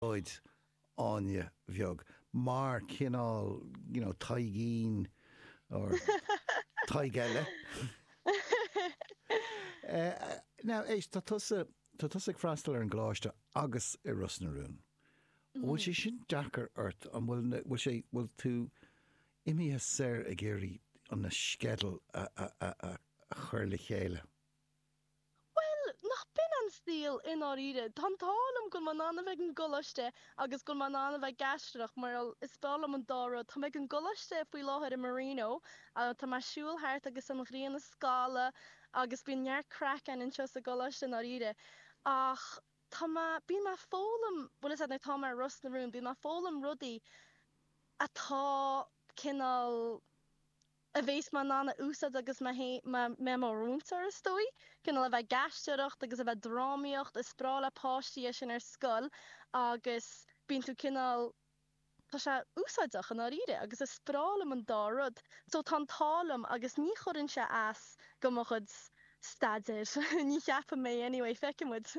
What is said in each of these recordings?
Bríd Áine Bheag, mar chineál you know Taidhgín or Tadhg eile. Now éist tá tusa tá tusa ag freastal ar an gcoláiste agus i Ros na Rún. An bhfuil sé sin deacair ort an bhfuil an bhfuil sé bhfuil tú imithe siar ag iarraidh an na sceidil a a a a a chur le chéile? Bhuel, níl sé chomh dona sin i ndáiríre. Tá an t-ádh liom go raibh mé in ann a bheith ag an gcoláiste agus go raibh mé in ann a bheith ag aisteoireacht mar gheall, is breá liom an dá rud. Táim ag an gcoláiste faoi láthair i Marino ach tá mé ag siúl thart agus an ghrian ag scalladh agus bíonn neart craic ann anseo sa gcoláiste i ndáiríre ach tá mé, bíonn mé ag foghlaim, bhuel fhios agat nuair atá mé i Ros na Rún, bíonn mé ag foghlaim rudaí atá cineál a bheas mé in ann a úsáid agus mé i mo mhúinteoir is dóigh, cineál a bheith ag aisteoireacht agus a bheith ag drámaíocht, is breá le páistí é sin ar scoil agus bíonn tú cineál, tá sé úsáideach i ndáiríre agus is breá liom an dá rud so tá an t-ádh liom agus ní chuireann sé as do mo chuid staidéir, ní cheapann mé anyway, feicfidh muid.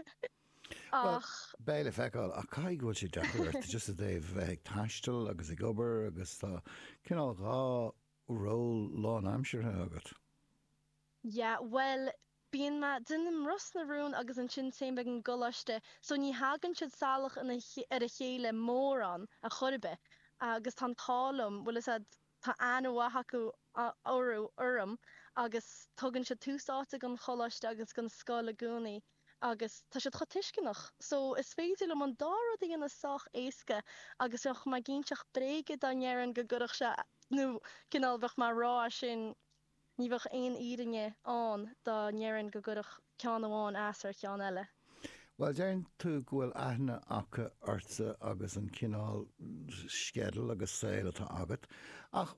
Bhuel, Ach. beidh le feiceáil, ach caithfidh go bhfuil sé deacair ort just i dtaobh bheith ag taisteal agus ag obair agus tá cineál dhá ról lánaimseartha agat. Yeah, bhuel, bíonn mé, déanaim Ros na Rún agus ansin téim ag an gcoláiste so ní thagann siad salach ina, ar a chéile mórán, ar chor ar bith agus tá an t-ádh liom, bhfuil a fhios agat Tá aithne mhaith acu orthu, orm, agus tugann siad tús áite don choláiste agus don scoil i gcónaí agus tá siad chomh tuisceanach so is féidir liom an dá rud a dhéanamh sách éasca agus bheadh mé ag inseacht bréige dá ndéarfainn go gcuirfeadh sé nó cineál bheadh mé ag rá sin Ní bheadh aon fhírinne ann dá ndéarfainn go gcuirfeadh ceann amháin as ar cheann eile. Bhuel, deireann tú go bhfuil aithne acu ortsa agus an cineál sceideal agus saol atá agat, ach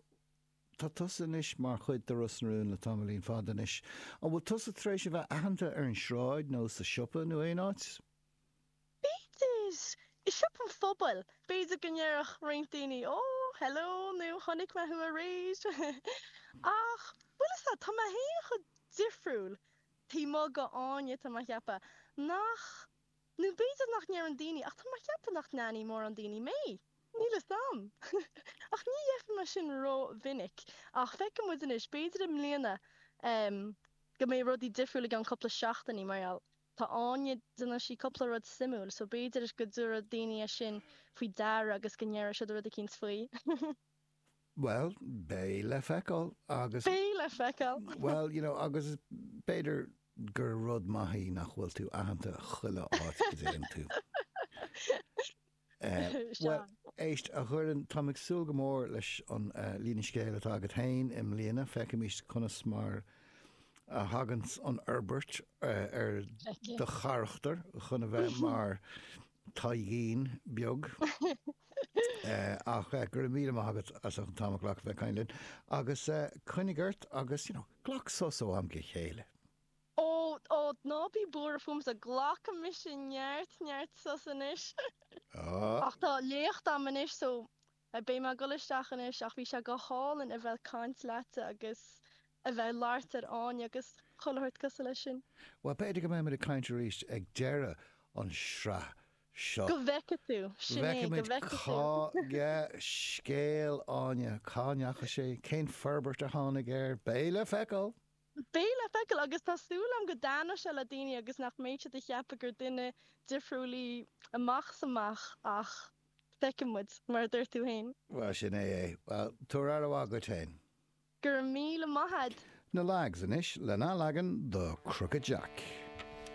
tá tusa anois mar chuid de Ros na Rún le tamaillín fada anois. An bhfuil tusa tar éis a bheith aitheanta ar an sráid nó sa siopa nó aon áit? B'fhéidir, i siopa an phobail, b'fhéidir go ndéarfadh roinnt daoine, Ó, hello, nó Chonaic mé thú aréir. Ach, bhfuil a fhios agat, tá mé féin chomh difriúil, taobh amuigh de Áine, tá mé a cheapadh, nach, nó b'fhéidir nach ndeireann daoine, ach tá mé a cheapadh nach n-aithneoidh mórán daoine mé. Níl 'fhios a'm. Ach ní dhéarfainn mar sin ró-mhinic. Ach feicfidh muid anois, b'fhéidir i mbliana, em, go mbeidh rudaí difriúil i gceann cúpla seachtainí mar gheall, Tá Áine, déanann sí cúpla rud suimiúil, so b'fhéidir go dtabharfadh daoine é sin faoi deara agus go ndéarfadh siad rud eicínt faoi. Bhuel, beidh le feiceáil agus. Beidh le feiceáil! Bhuel, you know, agus b'fhéidir gur rud maith é nach bhfuil tú aitheanta chuile áit a dtéann tú. Bhuel, éist, a Dhoireann, táim ag súil go mór leis an líne scéil atá agat féin i mbliana. Feicimís conas mar a thagann an fhorbairt ar do charachtar chun a bheith mar Tadhgín beag. Ach go raibh míle maith agat as an t-am a ghlacadh a bheith ag caint linn. Agus coinnigh ort agus, you know, glac sos ó am go chéile. Ó, ó, ná bí buartha fúmsa, glacfaidh mise neart, neart sos anois. Ach tá léacht agam anois so beidh mé ag dul isteach anois ach bhí sé go hálainn a bheith ag caint leatsa agus a bheith ag labhairt ar Áine agus chuile shórt cosúil leis sin. Bhuel, b'fhéidir go mbeimid ag caint arís ag deireadh an sraith seo. Go bhfeice tú, sin é, go bhfeice tú. Feicfimid cén scéal Áine, cá ndeachaigh sé, cén forbairt a tháinig air, beidh le feiceáil! Beidh le feiceáil agus tá súil agam go dtaitneoidh sé le daoine agus nach mbeidh siad ag ceapadh gur duine difriúil í amach is amach ach feicfidh muid, mar a dúirt tú féin. Bhuel, sin é é. Bhuel, tabhair aire mhaith dhuit féin. Go raibh míle maith a'd. Na leaids anois lena leagan do Crooked Jack.